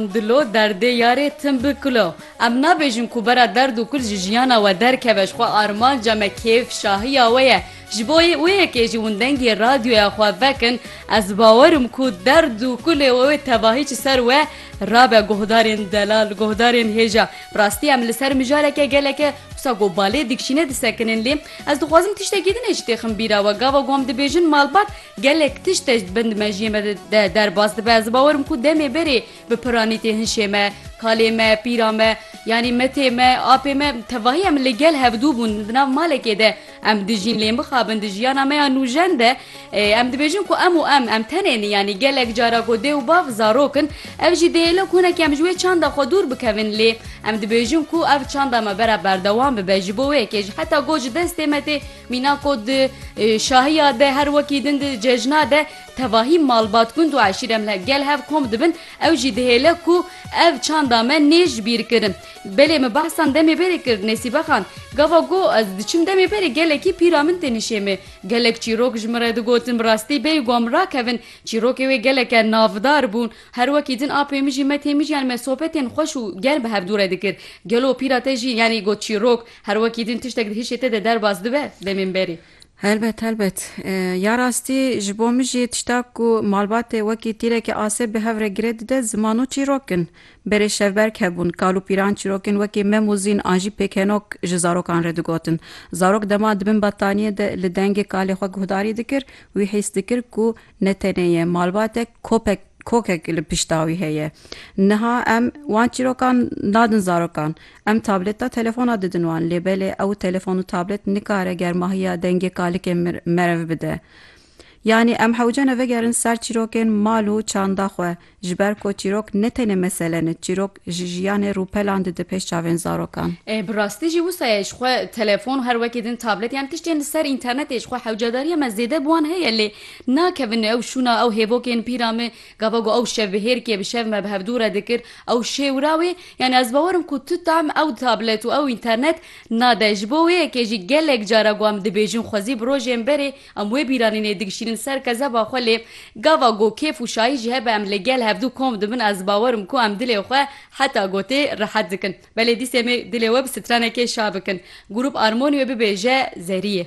Dilo derdê yarê tim bi kilo. Em nabêjin ku bera derd û kul ji jiyana we derkeve, ji xwe armanca me kêf, şahiya we ye. Ji bo wê yekê jî hûn dengê radyoya xwe vekin, ez bawer im ku derd û kulê we wê tevahî ji ser we rabe guhdarên delal, guhdarên hêja. Bi rastî em li ser mijareke geleke wisa ku balê dikşîne disekinin lê ez dixwazim tiştekî din ê ji têxin bîra we. Gava ku em dibêjin malbat, Gelek tişt e bin di mejiyê me de derbas dibe. Ez bawer im ku demê berê bi piranîtê hinşê me, kalê me, pîra me, yanî metê me, apê me tevahî em li gel hevdû bûn di nav malekê de em dijîn lê mixabin di jiyana me ya nûjen de em dibêjin ku em û em em tenê nin yanî gelek cara ku dê û bav zarok in ev jî dêylo kunekî em ji wê çanda xwe dûr bikevin lê em dibêjin ku ev çanda me bera berdewam bibe ji bo wê yekê ji heta got ji destê me tê Mîna ku di şahiya de her wekî din di cejna de tevahî malbat gund û eşîre me gel hev kom dibin ew jî dihêle ku ev çanda me nê ji bîr kirin. Belê min behsan demê berê kir Nesîbe Xan gava got ez diçim demê berê gelekî pîra min tên hişê me. Gelek çîrok ji min re digotin bi rastî bê ku em rakevin çîrokê wê geleke navdar bûn. Her wekî din apê min jî me tê mijiyan me sohbetên xweş û germ bi hev dû re dikir. Gelo pîra te jî yanî got çîrok. Her wekî din tiştek di hişê te de derbas dibe dê mînberî. Helbet helbet. Ya rastî ji bo min jî tişta ku malbatê wekî tîrekî asê bi hev re girê dide ziman û çîrok in. Berê şevberg hebûn, kal û pîran çîrokên wekî mem û zîn an jî pêkenok ji zarokan re digotin. Zarok dema di bin battaniyê de li dengê kalê xwe guhdarî dikir, wî hîs dikir ku Ne tenê ye, malbatek, kopek, kokek li pişta wî heye. Niha em wan çîrokan nadin zarokan. Em tableta, telefona didin wan. Lê belê ew telefon û tablet nikare germahiya dengê kalikê merev bide. Yanî em hewce ne vegerin ser çîrokên mal û çanda xwe, Ji ber ku çîrok ne tenê mesele ne, çîrok ji jiyanê rûpelan dide pêş çavên zarokan. E, bi rastî jî wisa ye, ji xwe telefon, her wekî din tablet yan tiştên li ser înternetê ji xwe hewcedariya me zêde bi wan heye lê nakevin ew şûna ew hêvokên pîra me gava ku ew şevbihêrkê bi şev me bi hevdû re dikir ew şêwira wê yanî ez bawer im ku tu tam ew tablet û ew înternet nade ji bo wê yekê jî gelek carak wan dibêjin xwezî bi rojên berê Em wê bîranînê digişînin ser kezeba xwe lê gava ku kêf û şahî jî hebe em li gel hevdu kom dibin ez bawer im ku em dilê xwe heta gotê rehet dikin belê dîsê me dilê we bi stranekê şabikin grûp armonî wê bibêje zerî yê.